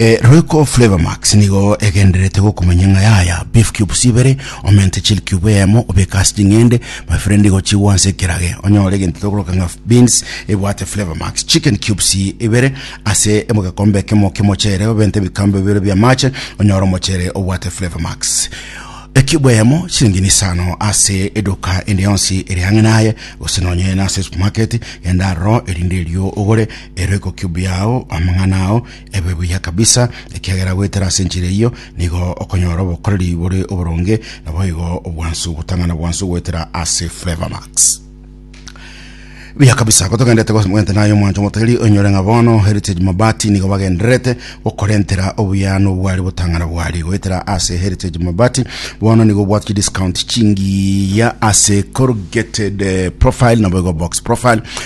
Ee, Royco Flavour Max nigo egendererete gokumanya ng'a yaya beef cubes ibere, omente chili cube eyemo, obeke ase ching'ende, my friend igo chigwe ase ekerage, onyore egento tokoroka ng'a beans ebwate Flavour Max, chicken cubes ibere ase egekombe ekemo ki'omochere, obente ebikombe bibere bi'amache, onyore omochere obwate Flavour Max. Ecube eyemo chilingini isano ase eduka ende yonsi eri ang'e naye gose nonye nase esupermarket genda aroro erinde erio ogore eroiko cube yao amang'ana ao Ebe buya kabisa, ekiagera goetera ase enchera eyio nigo okonyora obokoreri bore oboronge, naboigo obwansu gotang'ana bwansu goetera ase Flavourmax. Buya kabisa gotogendete gose mogente naye omwancho motageri onyore ng'a bono Heritage Mabati nigo bagendererete gokorentera obuya nobwari botang'ana bwari goetera ase Heritage Mabati bono nigo obwate chidiscount chingiya ase corrugated eh, profile naboigo box profile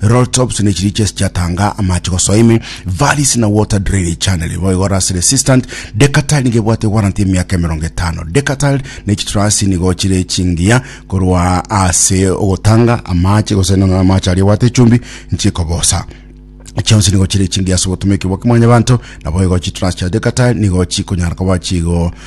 rolltops ne chirichi ase chiatanga amache gosoa ime, valleys na water drainage channel. Bo igo rust resistant, deckatile nigo ebwate warranty ya emiaka emerongo etano. Deckatile ne chitrasi nigo chire chingiya korwa ase ogotanga amache gose nonya amache aria obwate echumbi nchikobosa chionsi nigo chire chingiya ase obotomeki bwa kimwanyabanto nabo igo chitrasi chia deckatile nigo chikonyara koba chigo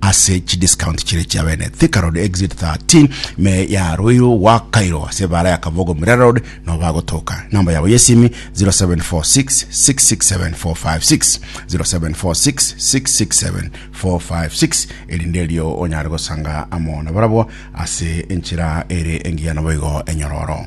ase chidiscount chire chia bene Thika Road exit 13 me ya Ruiru gwakairwa ase ebara ya Kabogo Murera Road no bagotoka namba yabo yesimi 0746667456 0746667456 erinde erio onyare gosanga amo na barabwo ase enchera ere engiya naboigo enyororo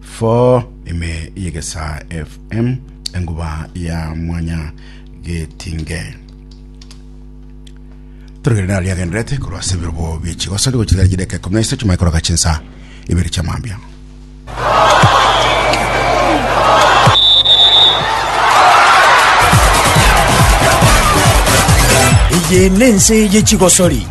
Fo ime yegesa FM enguba ya mwanya getinge torogere nari agenderete korwa ase ebirobo bie chigoso ndigochigera chideka ikomi na isatu maikoroka chinsa ibere chia mambia eye nense ye chigosori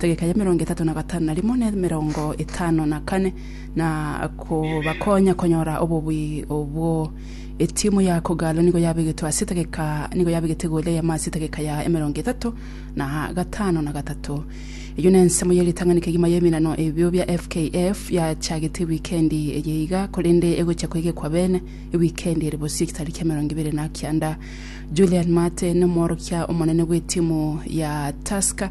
egeka ya emerongo etato na gatano na rimo na emerongo etano na kane na kobakonya konyora obobui obwo etimu ya kogalo nigo yabegetwe ase etageka nigo yabegete egoli eyemo ase etageka ya emerongo etato na gatano na gatato eyo na ensemo ya egetang'ani kegima ya eminano ebio bia fkf yachagete ewikendi eye iga korende egochia koegekwa bene ewikendi ere bosio ekitari kia emerongo ebere na kianda Julian Mate nomworokia omonene bw'etimu ya Tusker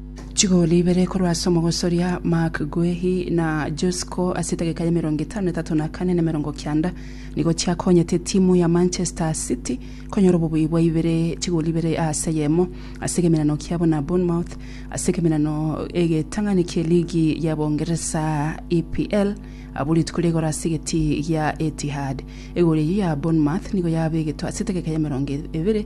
Chigoli ibere korwa ase omogosoria Marc Guehi na Josko ase edageka ya emerongo etano etato na kane na emerongo kianda nigo chiakonyete etimu ya Manchester City konyora obobui bwa ibere chigoli ibere ase eyemo ase egemenano kiabo na Bournemouth ase egemenano egetang'ani kie ligi ya Boongeresa EPL abwo rituko ria igoro ase egeti gia Etihad. Egori eyio ya Bournemouth nigo yabegetwe ase edageka ya emerongo ebere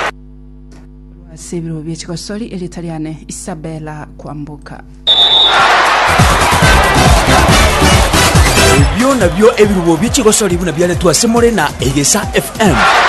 Ase ebirogo bie chigosori erieta riane Isabella Kwamboka. Ebio nabio ebirubo bie chigosori buna biaretwe ase more na Egesa FM.